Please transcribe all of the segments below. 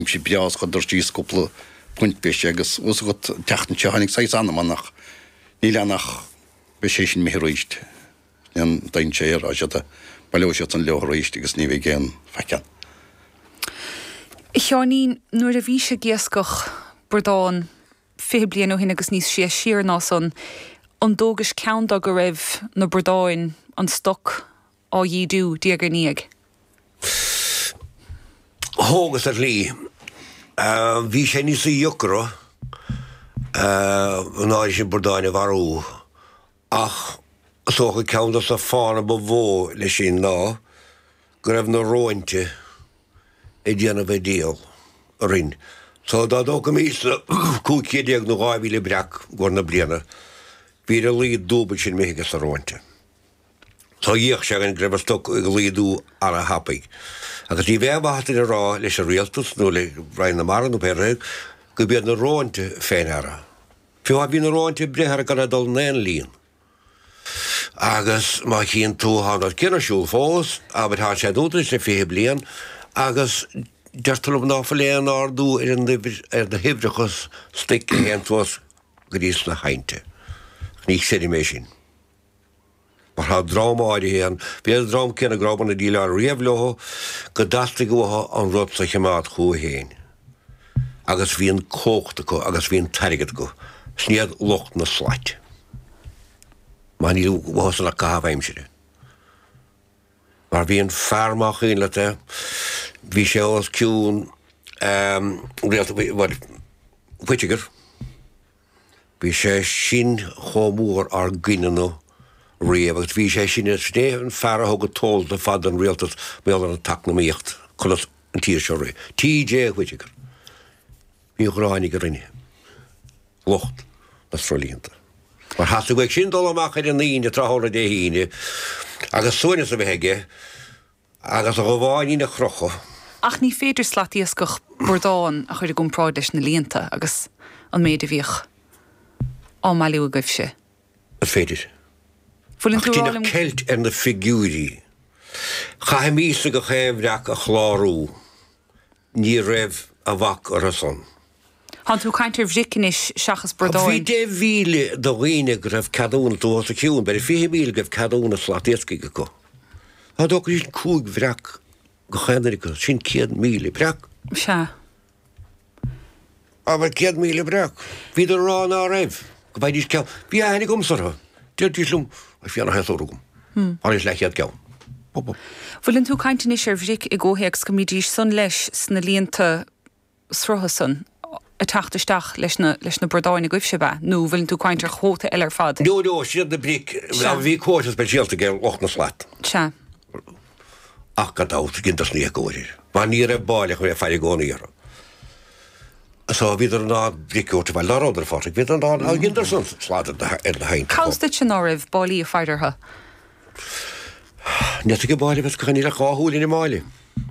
sé breá is chuadar síos cúpla punt breise agus a fhios agat an tseachtain seo tháinig saghas anama ach níl ann ach beidh sé sin imithe arís an dtéann sé ar ais fhad baileoidh siadsan leo arís agus ní bheidh aon faic ann. A Sheáinín, nuair a bhís ag iascach bradán fiche bliain ó shin agus níos sia siar ná san, an dtógais ceann do go raibh na bradáin, an stoc, á dhídiú, diaidh ar ndiaidh. Thógas ar shlí. Bhí sé níos deacra an uair sin bradáin a mharú, ach is dócha ceann dos na fáthanna ba mhó leis sin ná go raibh na róinte ag déanamh an diabhail orainn. So, dá dtógfaimis na 1500 nó 2000 breac i gcomhair na bliana, bhí ar a laghad dúbailt sin, imithe ages na róinte. Do bhí a fhios againn go raibh an stoc ag laghdú ana thapaidh, agus ní bheadh aon mhaith dúinn a rá leis an rialtas nó le Roinn na Mara nó pé rud é, go b'iad na róinte fé ndeara. Fiú má bhí na róinte ag breith orthu gan é dul in aon líon. Agus má chíonn tú thá an rud céanna ar siúl fós, abair thá sé dúnta anois le fiche bliain, agus deirtear liom ná fuil aon ardú ar an uimhir, ar na huimhreacha stuic a théann suas go dtí sna haibhnte. Ach ní chreidim é sin. Mar tá dream áirithe ann, bhí an dream céanna go rabhamar ag déileáil riamh leo go dteastaigh uathu an rud so a chimeád chucu féin. Agus bhí an cumhacht acu agus bhí an t-airgead acu. Sin iad lucht na slat. Mar níl uathu san ach caitheamh aimsire. Mar bhí an fear más cuimhin leat é, bhí sé os cionn an rialtais, bhuel, Whitaker. Bhí sé sin chomh mór inár gcoinne-ne riamh agus bhí sé sin sin é an fear a thug an t-eolas ar fad don Rialtas mar gheall ar an eacnamaíocht conas an tír seo a rith. T.J. Whitaker. Bhí an ghráin aige orainne, lucht na sruthlíonta. Mar theastaigh uaidh sin dul amach ar an Aoine tráthnóna Dé hAoine agus suaimhneas a bheith aige. Agus a dhubháinín a chrochadh. Ach ní féidir slatiascach bradán a chur i gcompráid leis na líonta agus an méid a bhíodh á mbailiú agaibhse. An féidir? Bhfuil tú ag rá liom. Ach deineadh ceilt ar na figiúirí. Chaithimisne gach aon bhreac a chlárú. Ní raibh a bhac orthu san. Thánn tú ag caint ar bhric anois seachas bradáin. Bhí deich mhíle de dhaoine go raibh ceadúnas, tú fós ag ciúin, b'fhéidir fiche míle go raibh ceadúnas slat iascaigh acu. Is dócha go raibh sin cúig bhreac gach aon uair acu, sin céad míle breac. Sea. Abair céad míle breac. Bhíodar ag rá ná raibh, go bhfaighidís ceann. Bhí aithne agamsa orthu. Deiridís liom, Is fíor nach aon sárú agam. Tháinig leathchéad ceann. Bhfuileann tú ag caint anois ar bhric i gcomhthéacs go mbídís san leis sna líonta? srutha san ag teacht isteach leis na, leis na bradáin agaibhse, ab ea? Nó bhfuileann tú ag caint ar chuóta eile ar fad? No, no, is iad na bric, Sea. a bhí cuóta speisialta aige lucht na slat. Sea. Ach gan dabht, dheineadar san éagóir air. Mar ní raibh báille acu ag faire i gcónaí orthu. So, bhíodar in ann bric a thabhairt abhaile. Ná rabhadar, a Phádraig, bhíodar in ann, ach dheineadar san slad ar na, ar na hainmhithe. Cá bhfios duitse ná raibh báillí ag faire orthu? Net ag an mbáille agus gan idir dhá shúil in aon bháille.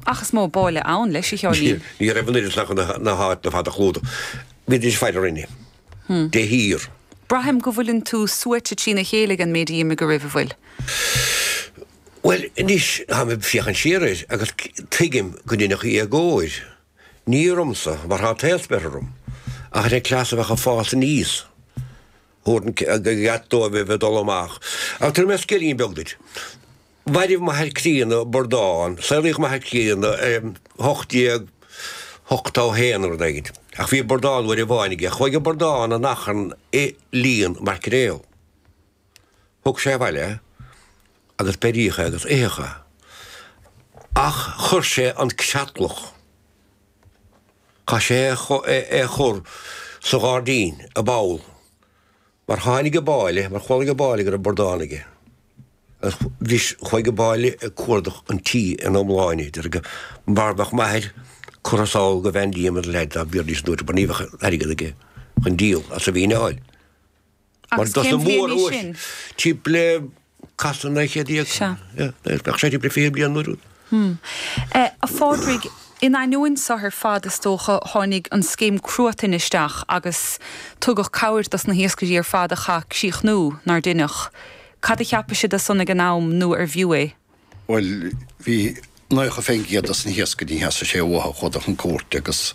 Ach is mó báille ann leis, a Sheáinín. Ní raibh an oiread san ina háit fada chlúdaigh bhídís ag faire orainne de shíor. Braithim go bhfuileann tú suaite trína chéile ag an méid a d'imigh oraibh, an bhfuil? Bhuel anois, táim ag féachaint siar air agus tuigim gur deineadh éagóir, ní ormsa, mar tá an t-aos beirthe orm, ach ar an cleas a bheadh ag fás aníos. Tabhair an ceart dóibh a bheith ag dul amach, ach tabharfaidh mé scéilín beag duit. Mhairbh m'athair críonna bradán, saolaíodh m'athair críonna i hocht déag hochtó haon nó rud éigin, ach bhí bradán uair amháin aige, chuaigh an bradán in achrann i líon maircréal. Thug sé abhaile é agus beiríodh é agus itheadh é. Ach chuir sé an creatlach. Chaith sé é a chur sa ghairdín, i bpoll, mar tháinig an báille, mar chualaigh an báille go raibh bradán aige, agus bhris, chuaigh an báille ag cuardach an tí ina iomláine, deir go mbeadh m'athair curtha sall go Van Diemen's Land dá mbéarfaí air an uair úd, mar ní bheadh airgead aige chun díol as an bhfíneáil. Mar do sna mór uair timpeall casadh naoi gcéad déag. Sea. Bheadh sé timpeall fiche bliain an uair úd. A Phádraig, in ainneoin so ar fad is dócha, tháinig an scéim cruatain isteach agus tugadh cabhair dos na hiascairí ar fad a chaith críochnú nár deineadh. Cad a cheapadh siad de san ag an am nó arbh fhiú é? Bhuel, bhí 90% dos na hiascairí theastaigh sé uathu dul chun cúirte agus